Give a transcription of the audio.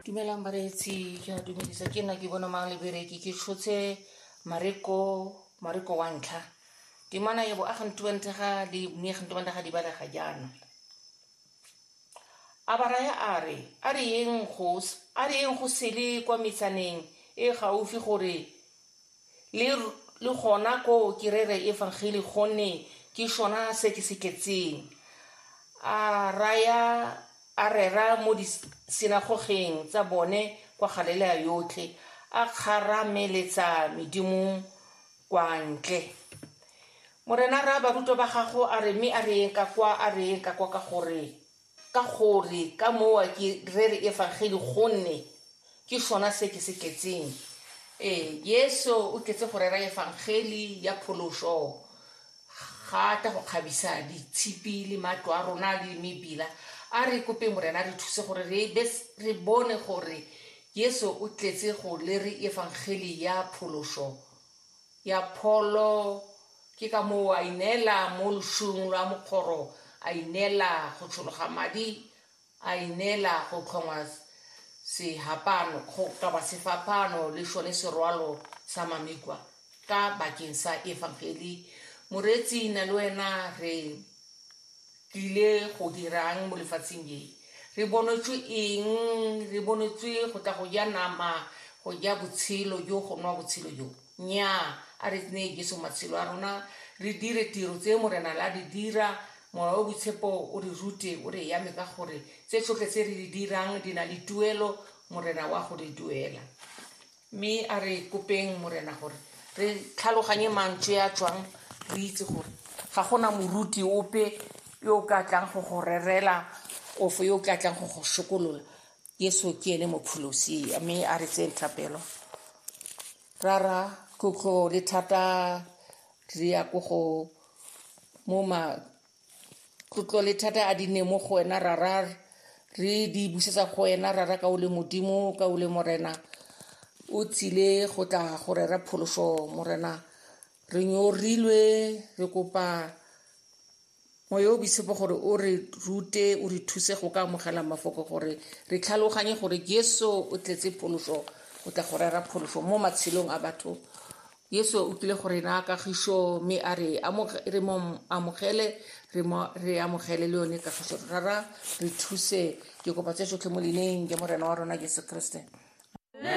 dumelang bareetsi ke a dumedisa ke nna ke bone mang lebereki ke tshotse mareko mareko wa ntlha dimana ye bo a ga ntubantega di mme ga ntubantega di balega jaana a baraya a re a re yeng go a re yeng go sele kwa metsaneng e gaufi gore Le, le gona koo kerere e vangeli gonne ke sona se ke se tletseng. A raya, a rera mo disinagogeng tsa bone kwa Galelea yotlhe, a kgarameletsa medimo kwa ntle. Morena ra barutwa ba gago a re, mme a re eng ka kwa, a re eng ka kwa ka gore Ka gore ka mowa ke rere Evangeli gonne ke sona se ke se tletseng. Ee, Jesu o tletse go rera Evangeli ya phološo. Ga a tla go kgabisa ditshipi le matlo a rona le mebila. A re kopeng Morena a re thuse gore re be re bone gore Jesu o tletse go lere Evangeli ya phološo. ya pholo, ke ka moo a ineela mo loshung lwa mokgoro, a ineela go tshologa madi, a ineela go tlhongwa sehapano, go kaba sefaphano le sone serwalo sa mamikwa ka bakeng sa efangeli. Moreetsi na le wena re Tlile go dirang mo lefatsheng le? Re bonetswe eng? Re bonetswe go tla go ja nama, go ja botshelo jo, go nwa botshelo jo? Nnyaa, a re neye Jesu matshelo a rona, re dire tiro tse Morena la di dira, Mowa o Boitshepo o re rute, o re yame ka gore tse tsotlhe tse re di dirang di na le tuelo, Morena wa go di duela. Mme a re kopeng Morena gore re tlhaloganye mantswe a tswang, re itse gore ga gona moruti ope yo o ka tlang go go rerela ofo yo o ka tlang go go sokolola. Yesu ke ene mopholosi. Mme a re tseng thapelo. Rara tlotlo le thata re ya ko go mo ma tlotlo le thata a di ne mo go wena rara re di busetsa go wena rara ka o le modimo ka o le morena o tsile go tla go rera pholoso morena re nyorilwe re kopa moya o boitshepo gore o re rute o re thuse go ka amogela mafoko gore re tlhaloganye gore jesu o tletse pholoso go tla go rera pholoso mo matshelong a batho Yesu o tlile go re naya kagišo mme a re re mo amogele re amogele le yone kagišo rara re thuse ke kopa tse tsotlhe mo leineng ke morena wa rona jesu kriste